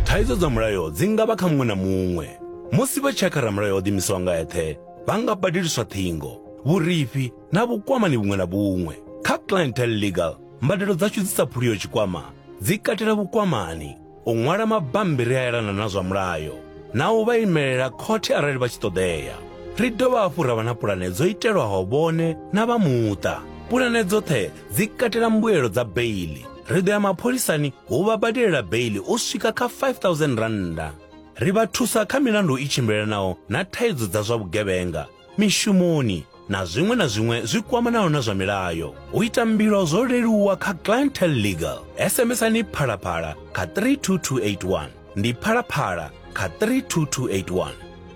Thaidzo dza mulayo dzi nga vha kha muṅwe na muṅwe. Musi vha tshakha ramulayo o ḓimisaho nga eṱhe, vha nga badeliswa ṱhingo, vhurifhi na vhukwamani vhuṅwe na vhuṅwe. Kha Clientele Legal, mbadelo dzashu dzi sa phuliho tshikwama dzi katela vhukwamani, u ṅwala mabammbiri a elana na zwa mulayo na u vha imelela khothe arali vha tshi ṱoḓea. Ri dovha hafhu ra vha na pulane dzo itelwaho vhone na vha muṱa. Pulane dzoṱhe dzi katela mbuelo dza beili ri ḓo ya mapholisani hu vha badelela beili u swika kha 5000 rannda ri vha thusa kha milandu i tshimbilelanaho na thaidzo dza zwa vhugevhenga mishumoni na zwiṅwe na zwiṅwe zwi kwamanaho na zwa milayo u ita mbilo zwo leluwa kha clientel legal sms-ani phalaphala kha 32281 ndi phalaphala kha 32281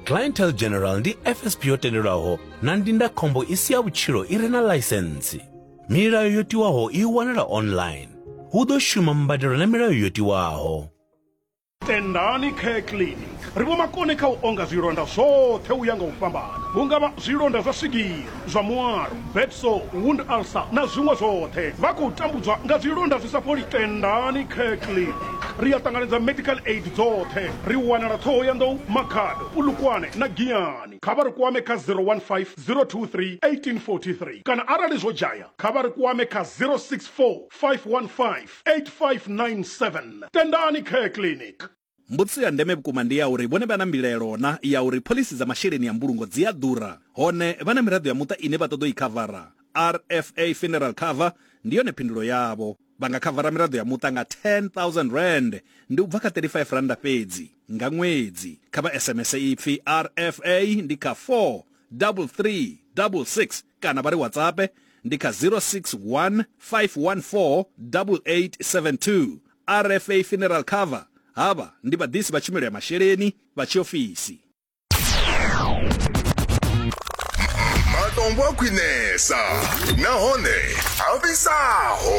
clientel general ndi fsp yo tendelwaho na ndindakhombo i si ya vhutshilo i re na ḽaisentsi Milayo yo tiwaho i wanala online. Hu ḓo shuma mbadelo na milayo yo tiwaho. Tendani Care Clinic ri vho makone kha u onga zwilonda zwoṱhe u ya nga u fhambana vhunga vha zwilonda zwa swigiri zwa muaro betso wound ulcer na zwiṅwe zwoṱhe vha khou tambudzwa nga zwilonda zwi sa fholi tendani care clinic ri a ṱanganedza medical aid dzoṱhe ri wanala ṱhoho ya nḓou makhado pulukwane na giyani kha vha ri kwame kha 015 023 1843 kana arali zwo dzhaya kha vha ri kwame kha 064 515 8597 Tendani Care Clinic. Mbudziso ya ndeme vhukuma ndi ya uri vhone vha na mbilaelo na ya uri phoḽisi dza masheleni a mbulungo dzi a ḓura hone vha na miraḓo ya muṱa ine vha ṱoḓa u i khavara. RFA Funeral Cover ndi yone phindulo yavho. Vha nga khavara miraḓo ya muṱa nga R10,000, ndi u bva kha R35 fhedzi, nga ṅwedzi. Kha vha SMS ipfi RFA ndi kha 43366 kana vha ri WhatsAppe ndi kha 061 514 8872. RFA Funeral Cover, Havha ndi vhaḓisi vha tshumelo ya masheleni vha tshiofisi. Matombo a khwinesa nahone a fhisaho.